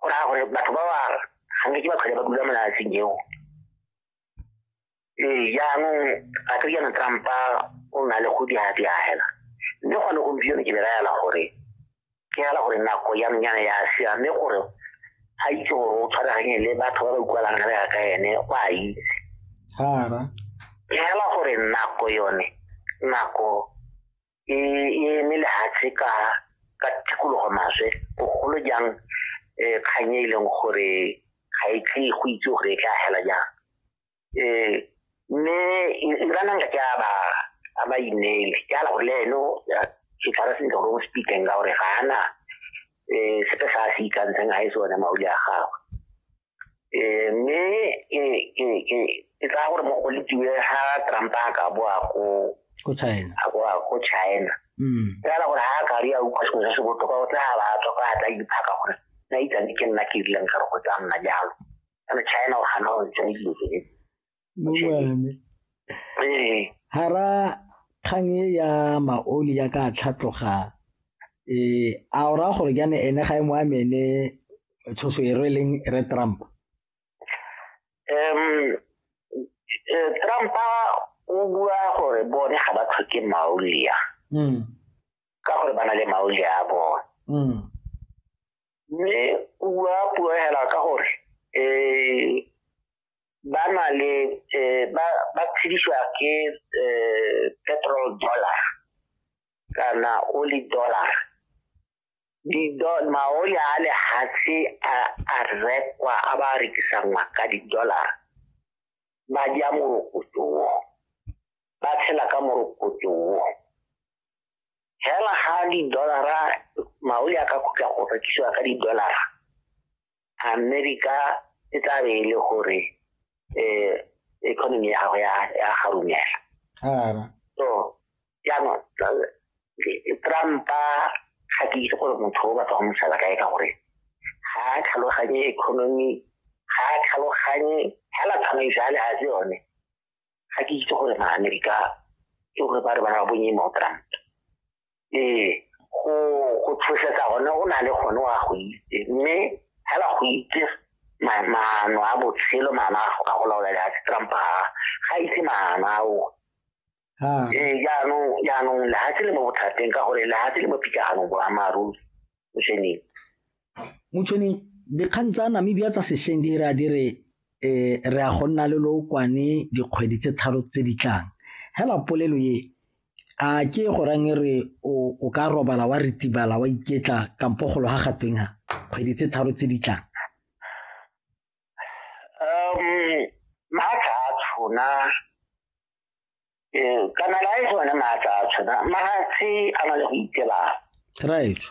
go raya gore batho ba ba gantsi ke ba tlhole ba dula mo lefatsheng eo ee jaanong gato jaana trumpa o na le go diadiagela mme gone gompieno ke belaela gore ke gela gore nako yanonyana ya siame gore ga itse gore o tshwaraganye le batho ba ba utlwalang re ya ka ene o a itse ke gela gore nako yone nako e e eme lehatshe ka ka tikologo maswe bogolo jang um kgang e e leng gore ga e tle go itse gore e tla hela jang um mme iranang ka ke a ba a ba ineele ke ala gore le eno ke tshwara sentle gore o speakeng ka gore ga ana um sepe sa se ikantseng ga e sone mauli a gagwe eh, mme e, e, e, e ka gore mo go letiwe ga trump a ka boa ko ko china a boa ko china mm. fela gore ga a ka ri a utlwa sengwe se se botoka o tla ba tswa ka a tla iphaka gore na itsane ke nna ke rileng ka re go tsa nna jalo kana china o gana go ntse dilo tse hara kgang e ya maoli ya ka tlhatloga um a o raya gore jane ene ga e mo amene tshoso e rweleng re trump um trump o bua gore bone ga ba tlhoke maolia hmm. ka gore ba na le maolia a bone hmm. mme o bua puo hela ka gore um ba na le um ba tshedisiwa ke um petrol dollar kana oli dollar maoli a lehatshe a rekwa a ba rekisanngwa ka di-dollar ba ja morokotso wo ba tshela ka morokotso wo fela ga di-dollara maoli a ka khutla go rekisiwa ka di-dollara america e tla be e le gore um economy ya gago ya garumela so jaanong trumpa ga ke itse gore motho o batla go mosala kae ka gore ga a tlhaloganye economy ga a tlhaloganye fela tsamaiso ya lehazi yone ga ke itse gore maamerika ke gore ba re bana ba bonye mo trump ee go go tshosetsa gone o na le gone wa go itse mme fela go itse maano a botshelo maano a go ka go laola le a trump ga ga itse maano ao ee jaanong jaanong lehatshe le mo bothateng ka gore lehatshe le mo pikaganong boammaaruri o seneng motšhoneng dikgang tsa namibia tsa sešweng di ra di re um re ya go nna le lookwane dikgwedi tse tharo tse di tlang hela polelo ye a ke go rang e re o ka robala wa retibala wa iketla kampo golo ga gatweng ga kgwedi tse tharo tse di tlang um maatla a tshona Eh, kana la e bona maatla a tshwana magatse a na le go itebala right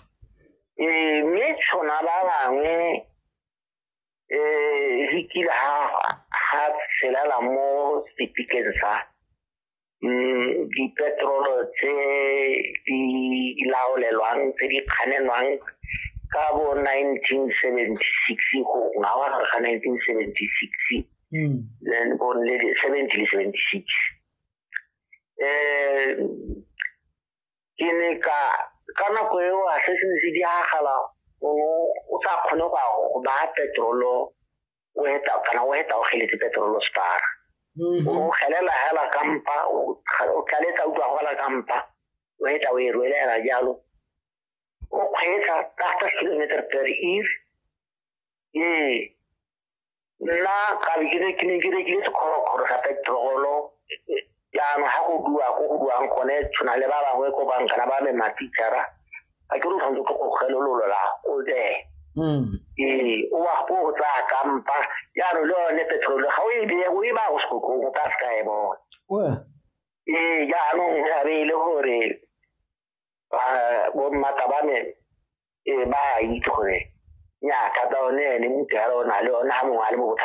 eh mme tshwana ba bangwe eh re kile ha ha tshela mo sepikeng sa mm di petrol tse di laolelwang tse di kganelwang ka bo 1976 go ngawa ga 1976 mm. then born le 70 le 76 eh ke ne ka ka nako eo a se se ne se diagala o sa kgone go go ba petrolo o heta kana o heta o geletse petrolo spara mm-hmm. o gelela hela kampa o tlaletsa utlwa go la kampa o heta o e rwelela jalo o kgweetsa thirty kilometer per hour ee nna ka be ke re- ke ne ke rekile sekgorokgoro sa petrolo jaanong ga go bua ko go buang gone tshwana le ba bangwe ko bankana ba me matitšhara ga ke re o tshwanetse ke go kgelololola o tsee Mm. ee o wa go tsaya kampa jaanong le yone petrolo ga o e beye o e ba go sekokong o ka se ka e bona Well, ee jaanong ga be e le gore ba bo mmata ba me e ba itse gore nya thata one ene muthu ya lona le ona ha mongwe a le mo botlha